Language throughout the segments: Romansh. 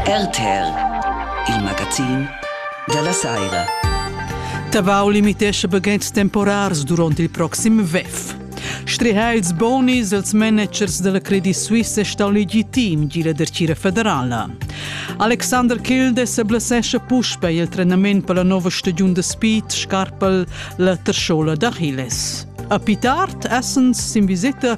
RTR, il magazin dalla saira. Tabau limitescha baghetgs temporars duront il proxim WEF. Strihà ils bonis als managers della Credit Suisse sta legitim gi la dercira federala. Alexander Kildes blessescha puspei il trenament per la nova stagiun de speed scarpel la terschola d'Achilles. A Pitart essens sin visita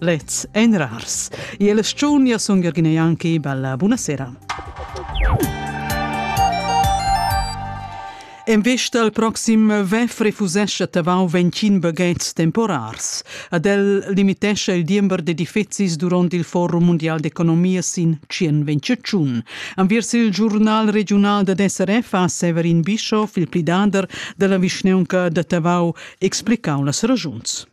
Lets ein rars. Ie la sciunia sun Jürgen Janki, bella buonasera. En vista al proxim vef refusesce tavau 25 baghetgs temporars. Ad el limitesce il diember d'edifizis durant il Forum Mondial d'Economia sin 121. Anviers il giurnal regional da SRF ha Severin Bischof, il plidader della vischneunca da Tavau, explicau las ragiuns.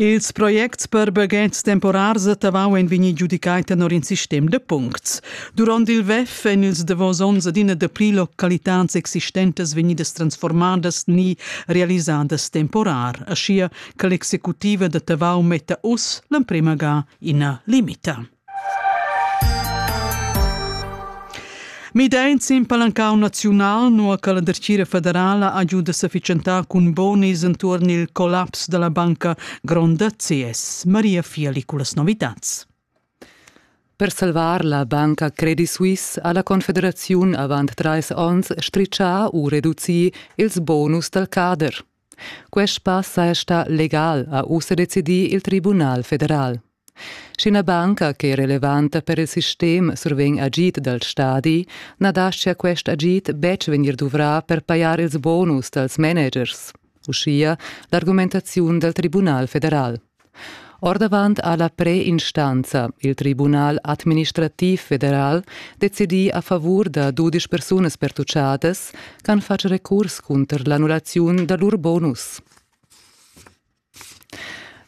Ils projects per baghetgs temporars a Tavau ein vegni giudicai tenor in sistem da puncts. Duront il WEF ein ils davos onns adina dapli localitads existentas vegnidas transformadas ni realisadas temporar, aschia che l'executiva da Tavau metta uss l'emprema ga ina limita. Midain sin palancau naziunal nua che la dertgira federala ha giu da sefficientar cun bonis entuorn il collaps dalla banca gronda CS. Maria Fiali cu las novitads. Per salvar la banca Credit Suisse ha la Confederaziun avant trais onns stritschà u reducì ils bonus dal cader. Quest pass saja stà legal, ha ussa decidì il Tribunal federal. Sch'ina banca che è relevanta per il sistem survegn agid dal stadi, na dastia quest agid betg vegnir duvrà per pajar ils bonus dals managers, uschia l'argumentaziun dal Tribunal federal. Ordavant ha la preinstanza, il Tribunal administrativ federal, decidì a favur da dudesch persunas pertutgadas ch'han fatg recurs cunter l'annullaziun da lur bonus.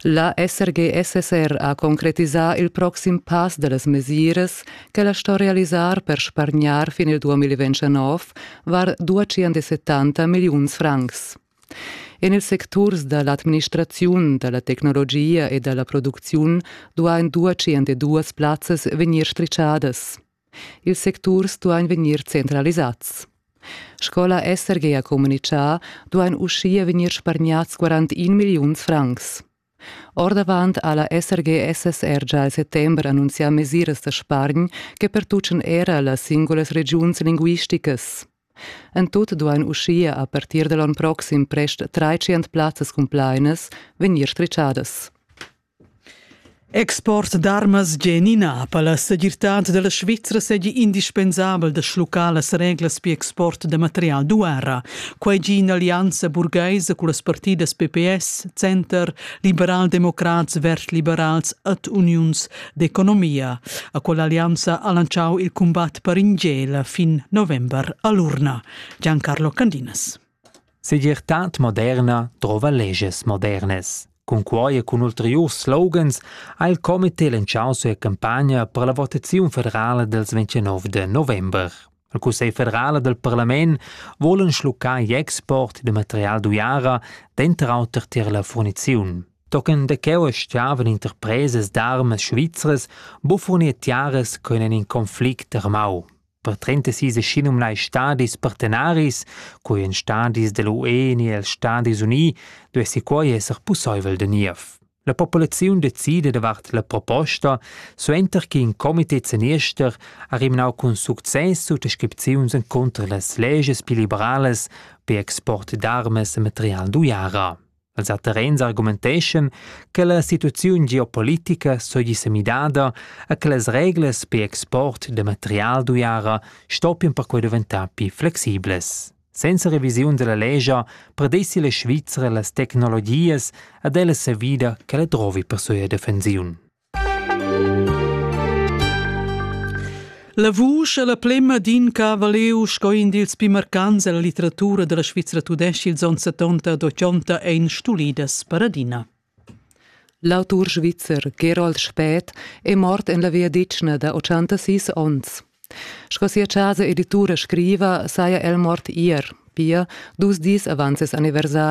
La SRGSSR ha concretisà il proxim pass da las mesiras ch'ella sto realisar per spargnar fin il 2029 var 270 milliuns francs. En ils secturs da l'administraziun, da la tecnologia e da la producziun duain dua tschient e duas plazzas vegnir strischadas. Ils secturs duain vegnir centralisads. Sco la SRG ha communitgà, duain uschia vegnir spargnads 41 milliuns francs. Ordavant ha la SRG-SSR gia il settember annunzià mesiras da spargn che pertuchan era las singulas regiuns linguisticas. En tut duain uschia a partir da l'onn proxim prest 300 plazzas cumplainas vegnir strischadas. Export d'armas genina per la segirtad dalla Svizra seigi indispensabel da schluccar las reglas per export da material d'uara. Quai gi in'allianza burgaisa cun las partidas PPS, Center, liberaldemocrats, vert-liberals et uniuns d'economia. A quell'allianza ha lanciau il combat per in gela fin november a l'urna. Giancarlo Candinas. Segirtad moderna trova leges modernes. Cun quai e cun ulteriurs slogans ha il comité lanciau sua campagna per la votaziun federala dels 29 de november. Il Cussegl federal dal parlament vulan schluccar l'export da material d'uiara, denter auter tier la furniziun. Tochen da cheu stavan interpresas d'armas svizras buffurnier tiaras con in conflict armau. Per 36 schinum lai stadis partenaris, coi en stadis dell'UE ni els Stadis Unii, duessi quei esser pusseivel de niev. La populaziun decida davart la proposta, suenter che in comité zeniester ha rimnau cun success suttascripziuns encunter las legias pli liberalas per export d'armas e material d'uiara. Els a terrens argumenteschan che la situaziun geopolitica segi semidada e che las reglas per export de material d'uiara stoppian perquei diventar pli flexibles. Senza revisiun dalla lescha predessi la Svizra las tecnologias ad ella savida ch'ella drovi per sia defensiun. La vusch è la plemma d'in cavaleu sco in dils pli marcants della litteratura della Svizra tudesca ils onns 70 ad 80 ein stulidas per adina. L'autur svizzer Gerold Spät è mort en la viadetgna da ottantasis onns. Sco sia chasa editura scriva, saja el mort ier, pia dus dis avant ses anniversari.